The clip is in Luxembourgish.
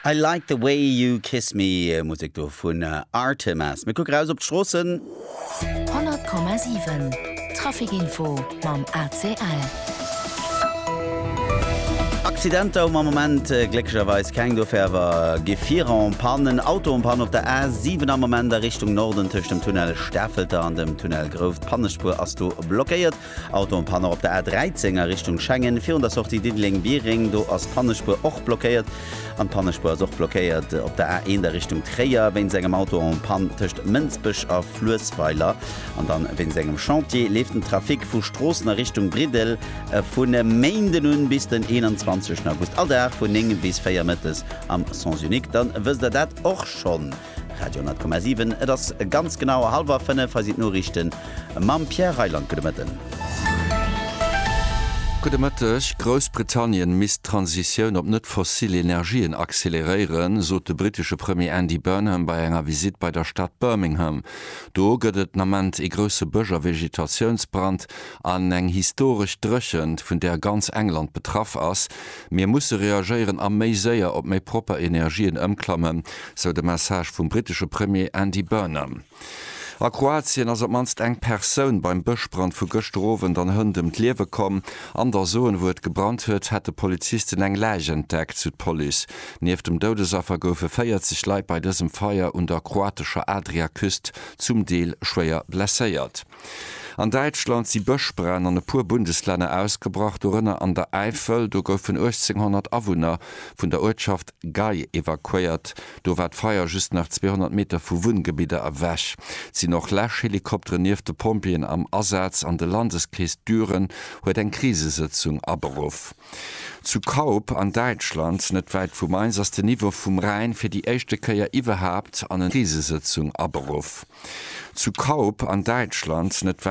I Like the Way You Kiss Me, Musek do vun Artemas. Mir kucke raus op d'Stroossen. 100,7 Traficinfo mam ACL. Accidenter um Moment glécklecherweis keng, dofir awer Gefierer en panne. En Auto en panne op der A7 am Moment a Richtung Norden tëscht dem Tunnel Stafelter an dem Tunnel Grouft. D'Pannespuer ass do blockéiert. Autopanne op der A13 a Richtung Schengen, virun der Sortie Diddeleng-Biereng. Do ass d'Pannespuer och blockéiert. An d'Pannespuer ass och blockéiert op der A1 a Richtung Tréier, wéinst engem Auto en panne tëscht Mënsbech a Fluessweiler. An dann, wéinst engem Chantier, leeft den Trafic vu Stroossen a Richtung Briddel vun e Méinden un bis den 21 August all Dag vun 9 bis 4 mëttes am Sens unique. Dann wësst der dat och schonn. Radio 10,7 Et ass ganz genau halwer 5. Hei sinn d'Noriichten mam Pierre Reyland. Gudde Mëtten. Gudde Mëtteg. Groussbritannien misst d'Transitioun op net fossil Energien acceleréieren, sot de brittesche Premier Andy Burnham bei enger Visitt bei der Stad Birmingham. Do gëtt et den Ament ee grousse Bësch a Vegetatiounsbrand an eng historesch Dréchent, vun där ganz England betraff ass. Mir musse reagéieren a méi séier op méi propper Energien ëmklammen, sou de Message vum brittesche Premier Andy Burnham. A Kroatien ass op d'mannst eng Persoun beim Bëschbrand vu gëschter Owend an Hënt ëm d'Liewe komm. An der Zon, wou et gebrannt huet, hätte Polizisten eng Läich entdeckt, sou d'Police. Nieft dem Doudesaffer goufe 40 Leit bei dësem Feier un der kroatescher Adriaküst zum Deel schwéier blesséiert. An Däitschland si Bëschbränn an e puer Bundeslänner ausgebrach, dorënner an der Äifel. Do goufen 1.800 Awunner vun der Uertschaft Gay evakuéiert. Do war d'Feier just nach 200 Meter vu Wunngebidder ewech. Et sinn och Läschhelikopteren nieft de Pompjeeën am Asaz an de Landeskrees Düren huet eng Krisesëtzung aberuff. Zu Kaup an Däitschland, net wäit vu Mainz, ass den Niveau vum Rhäin fir déi éischte Kéier iwwerhaapt an en Krisesëtzung aberuff. Zu Kaup an Däitschland, net wäit.